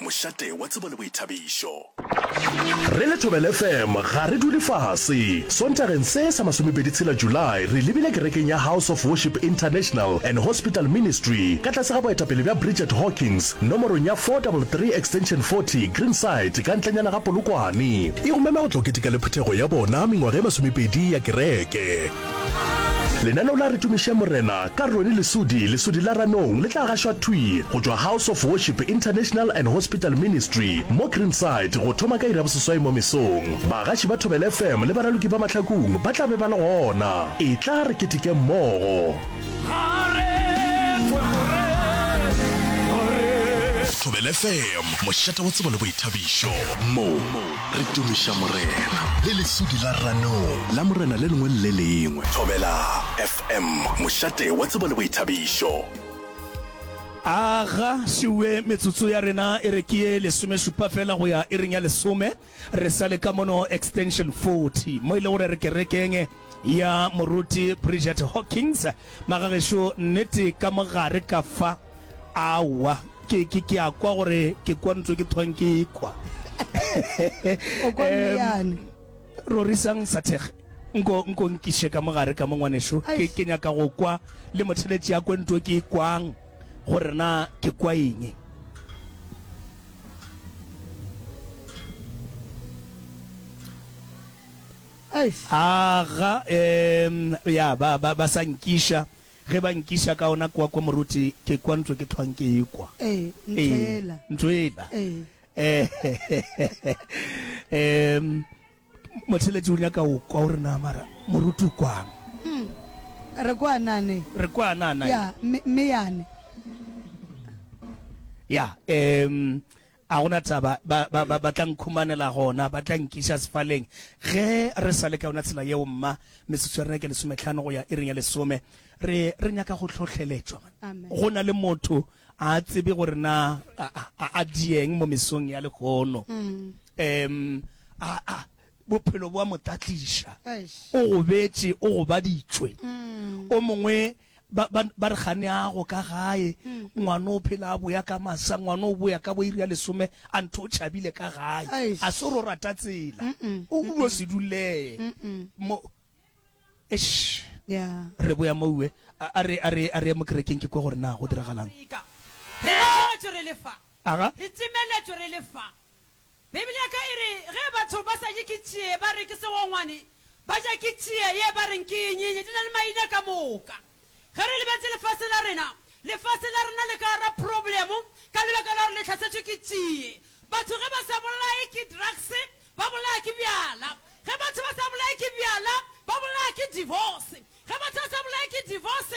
Mošate wa tsebo le boithabišo. Re le Thobela FM ga re dule fase. Sontageng se sa masomepedi tshela July re lebile kerekeng ya House of Worship International and Hospital Ministry ka tlase ga boetapele bja Bridget Hawkins nomorong ya 433 extension 40 Greenside ka ntlenyana ga Polokwane. E go mema go tla o keteka le phuthego ya bona mengwaga e masomepedi ya kereke. Lenaneo la Re Tumišeng Morena ka Ronnie Lesudi, Lesudi la Ranong, le tla gašwa thwi go tšwa House of Worship International and Hospital Ministry mo Greenside go thoma ka iri ya boseswai mo mesong. Bagaši ba Thobela FM le baraloki ba mahlakung ba tla be ba le gona. Etla re ketekeng mmogo. Thobela FM, mošate wa tsebo le boithabišo. Mo. Re tumiša Morena le lesudi la ranong. La Morena le lengwe le le lengwe. Thobela FM, mošate wa tsebo le boithabišo. A ga se we metsotso ya rena e re ke ye lesomešupa fela go ya iring ya lesome, re sa le ka mono extension 40, mo e le gore re kerekeng ya Moruti Bridget Hawkins. Magagešo, nnete ka mo gare ka fa. Aowa, ke, ke, ke a kwa gore ke kwa ntse ke thwang ke kwa. O kwa meyane. Rorisang Sathege, nko, nko nkiše ka mogare ka mo ngwanešu. Ke, ke nyaka go kwa le motheletši ya kwe ntwe ke kwang gore na ke kwa eng. Aga, um, ya, ba, ba, ba sa nkiša. Ge ba nkiša ka ona kwa, kwa moruti, ke kwa ntlo ke tlhwang ke ekwa. Ee, ntho Ee, ela. ntlo ela. Ee. Ee. Em, Motheletši o nyaka go kwa, o re, Na mara moruti o kwang? Re kwana ne. Re kwana na? Ya, mme, mme yane. Ya, em, A go na taba, ba, ba, ba, ba tla nkhumanela gona, ba tla nkiša sefaleng. Ge re sa le ka yona tsela yeo, mma, metsotso ya rena ke lesometlhano go ya iring ya lesome, re, re nyaka go hlohleletšwa. Go na le motho a a tsebe gore na a, a, a, a dieng mo mesong ya lehono. Um, a, a, Bophelo bo a mo tatliša. O gobetše, o gobaditšwe. O mongwe ba, ba, ba re gane ago ka gae ngwana o phela a boya ka masa ngwana o boya ka boiri ya lesome a ntho o tšhabile ka gae Eish. a se ro rata tsela Mm-mm. o ulo se duleye Mm-mm. mo Eish. Yeah. re boya moue a a re a re a re ye mo kerekeng ke kwe gore na go diragalang Afrika. Re timeletšwe re le fa. aga Re timeletšwe re le fa. Beibele ya ka e re, Ge batho ba sa je ke tšie ba re ke segongwane, ba ja ke tšie ye ba reng ke ye nyenye. Di na le maina ka moka. Ge re lebeletše lefase la rena, lefase la rena le ka gara problemo ka lebaka la gore le hlasetšwe ke tšie. Batho ge ba sa bolaye ke drugs, ba bolaya ke bjala. Ge batho ba sa bolaye ke bjala, ba bolaya ke divorce. Ge batho ba sa bolaye ke divorce,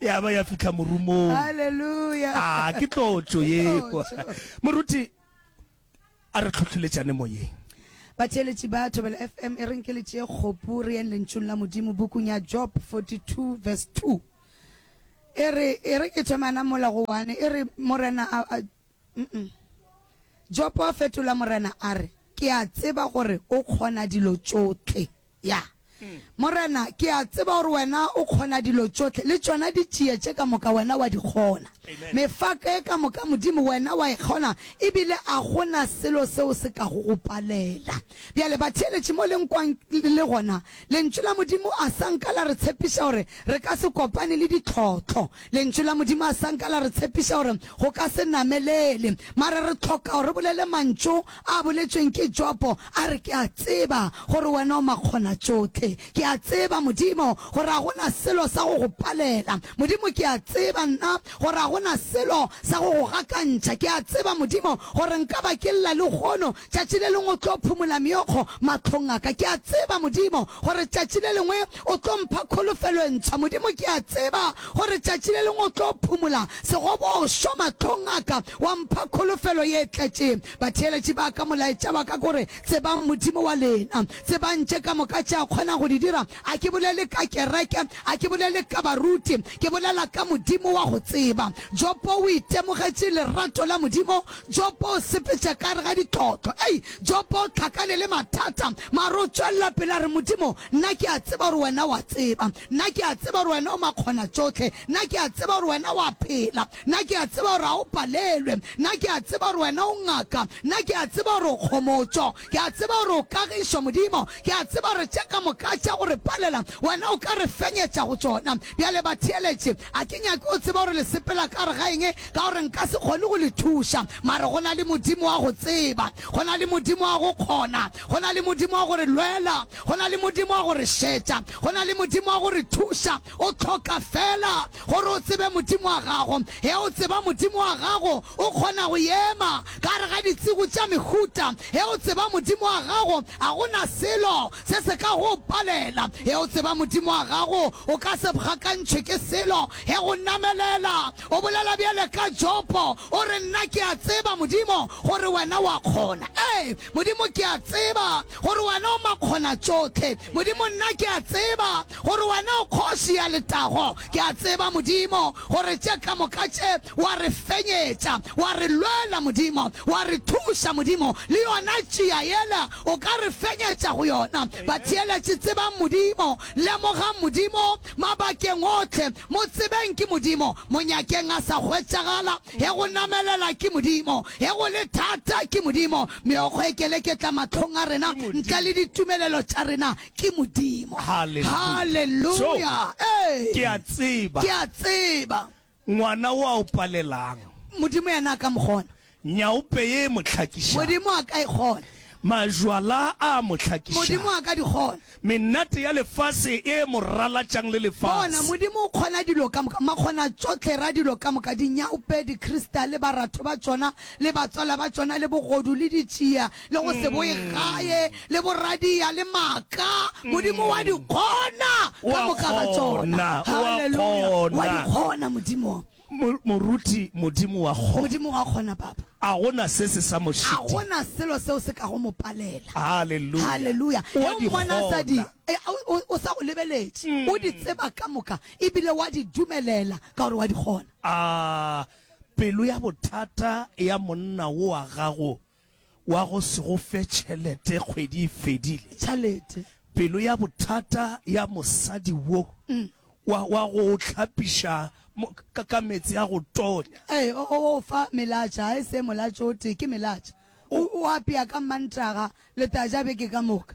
ya ba ya fihla morumong Hallelujah. a ke tlotšo Ke yeo tlotšo. moruti a re tlhotlheletšane moyeng batheeletši ba thobela fm e reng ke letšee kgopu re yeng lentšung la modimo bukung ya job 42 verse 2 e re e re ke thomana mola go wane e re morena a, a, mm-mm. jopo a fetola morena a re ke a tseba gore o kgona dilo tšohle Ya, Morena, ke a tseba gore Wena o kgona dilo tšohle, le tšona di tšie tše ka moka, Wena wa di kgona. Mefako ye ka moka, Modimo, Wena wa e kgona, e bile a go na selo seo se ka go go palela. Bjale, batheeletši, mo le nkwang le le gona, Lentšu la Modimo a sa nka la re tshepiša gore re ka se kopane le ditlhohlo. Lentšu la Modimo a sa nka la re tshepiša gore go ka se namelele. Mara re tlhoka gore re bolele mantšu, A boletšweng ke Jopo, a re, Ke a tseba gore Wena o Makgonatšohle. Ke a tseba, Modimo, gore ga go na selo sa go Go palela. Modimo, ke a tseba nna gore ga go na selo sa go Go gakantšha. Ke a tseba, Modimo, gore nka ba ke lla lehono, tšatši le lengwe O tlo phumola meokgo mahlong a ka. Ke a tseba, Modimo, gore tšatši le lengwe O tlo mpha kholofelo e ntshwa, Modimo. Ke a tseba gore tšatši le lengwe O tlo phumola segobošwa mahlong a ka, wa mpha kholofelo ye e tletšeng. Batheeletši ba ka, molaetša wa ka ke gore, Tsebang Modimo wa lena. Tsebang tše ka moka tše A kgonago go di dira. A ke bolele ka kereke, a ke bolele ka baruti, ke bolela ka Modimo wa go tseba. Jopo o itemogetše lerato la Modimo. Jopo o sepetša ka gare ga ditlotlo. Ei! Jopo, tlhakane le mathata, mare o tšwelela pele, a re, Modimo, nna ke a tseba gore Wena o a tseba. Nna ke a tseba gore Wena o Makgonatšohle. Nna ke a tseba gore Wena o a phela. Nna ke a tseba gore ga o palelwe. Nna ke a tseba gore Wena o Ngaka. Nna ke a tseba gore o kgomotšo. Ke a tseba gore o kagišo, Modimo. Ke a tseba gore tše ka moka tša go re palela, Wena o ka re fenyetša go tšona. Bjale, batheeletše, a ke nyake o tsebe gore le sepela ka gare ga eng. Ka gore nka se kgone go le thuša, mare go na le Modimo wa go tseba, go na le Modimo wa go kgona, go na le Modimo wa go re lwela, go na le Modimo wa go re šetša, go na le Modimo wa go re thuša. O hloka feela gore o tsebe Modimo wa gago. Ge o tseba Modimo wa gago, o kgona go ema ka gare ga ditšego tša mehuta. Ge o tseba Modimo wa gago, ga go na selo se se ka go o palela. Ge o tseba Modimo wa gago, o ka se bgakantšhwe ke selo. Ge go namelela O bolela bjale ka Jopo, o re, Nna ke a tseba, Modimo, gore Wena o a kgona. Ee, Modimo, ke a tseba gore Wena o Makgonatšohle. Modimo, nna ke a tseba gore Wena o Kgoši ya letago. Ke a tseba, Modimo, gore tše ka moka tše Wa re fenyetša, Wa re lwela, Modimo, Wa re thuša, Modimo. Le yona tšia yela O ka re fenyetša go yona. Batheeletši, tsebang Modimo, lemogang Modimo, Mabakeng ohle, mo tsebeng ke Modimo, mo nyakeng a sa hwetšagala, ge go namelela ke Modimo, ge go le thata ke Modimo, meokgo e keleketla mahlong a rena ntle le ditumelelo tša rena ke Modimo. Haleluya! Haleluya! Ee, Ke a tseba. Ke a tseba. Ngwana o a o palelang. Modimo yena a ka mo kgona. Nyaope ye e mo hlakišang. Modimo a ka e kgona. Majwala a a mo hlakišang. Modimo a ka di kgona. Menate ya lefase e mo ralatšang le lefase. Bona, Modimo o kgona dilo ka moka. Makgonatšohle ra dilo ka moka, dinyaope, dikristale, baratho ba tšona le batswala ba tšona le bogodu le ditšia le go se boe gae, le boradia, le maaka, Modimo wa di kgona ka moka ga tsona. Haleluya! Wa di kgona, Modimo. Moruti, Modimo wa kgona. Modimo wa kgona, Papa. A go na se se sa mo šite. A go na selo seo se ka go mo palela. Haleluya! Haleluya! Wa di kgona. E, o sa go lebeletše, mm. o di tseba ka moka, ebile wa di dumelela ka gore wa di kgona. A pelo ya bothata ya monna wo wa gago wa go se go fe tšhelete kgwedi e fedile. Tšhalete. Pelo ya bothata ya mosadi wo wa, wa go o hlapiša mo, ka, ka meetse a go tonya. Ee, o, o o fa melatša, ga e se molatšo o tee, ke melatša. O, o apea ka Mmantaga, le tla ja beke ka moka.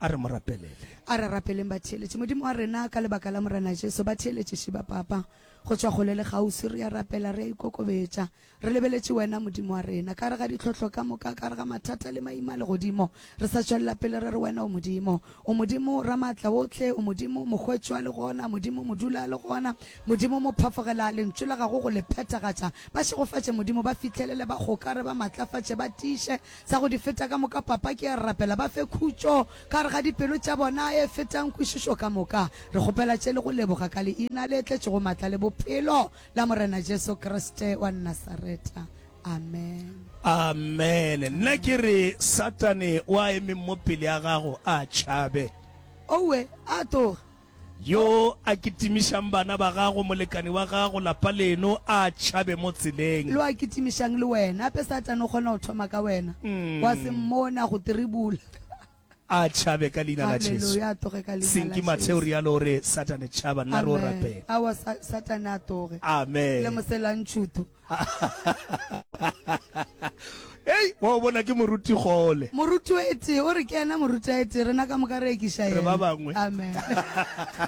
A re mo rapelele. A re rapeleng batheeletši. Modimo wa rena, ka lebaka la Morena Jesu, batheeletši šiba Papa, go tšwa kgole le kgauswi, re ya rapela, re ya ikokobetša, re lebeletše Wena, Modimo wa rena, ka gare ga ditlhohlo ka moka, ka gare ga mathata le maima a legodimo, re sa tšwelela pele, re re, Wena o Modimo, o Modimo Ramaatlaohle, o Modimo Mokgwetši wa legona, Modimo Modula a legona, Modimo Mophafogela a Lentšu la Gago go le phethagatša. Ba šegofatše, Modimo, ba fihlelele, ba gokare, ba matlafatše, ba tiiše, Sa go di feta ka moka, Papa, ke a rapela ba fe khutšo ka gare ga dipelo tša bona e fetang kwešišo ka moka. Re kgopela tše le go leboga ka Leina le tletšego matla le bophelo la Morena Jesu Kriste wa Nasareta. Amen. Amen. Nna ke re, Satane o a emeng mo pele a gago, a tšhabe. Owe, a tloga. Yo a kitimišang bana ba gago, molekani wa gago, lapa leno, a tšhabe mo tseleng. Lo a kitimišang le wena. Gape Satane o kgona go thoma ka wena, wa se mmone a go tiribula. A tšhabe ka Leina la Jesu. Haleluya, a tloge ka Leina la Jesu. Senki Mathe o realo, o re, Satane, tšhaba! Nna re o rapela. Amen. Aowa, Sa, Satane a tloge. Amen. Le moselantšhutho. Hei, wa o bona ke moruti gole. Moruti o etee, o re ke ena moruti a etee, rena ka moka re ekiša ena. Re ba bangwe. Amen.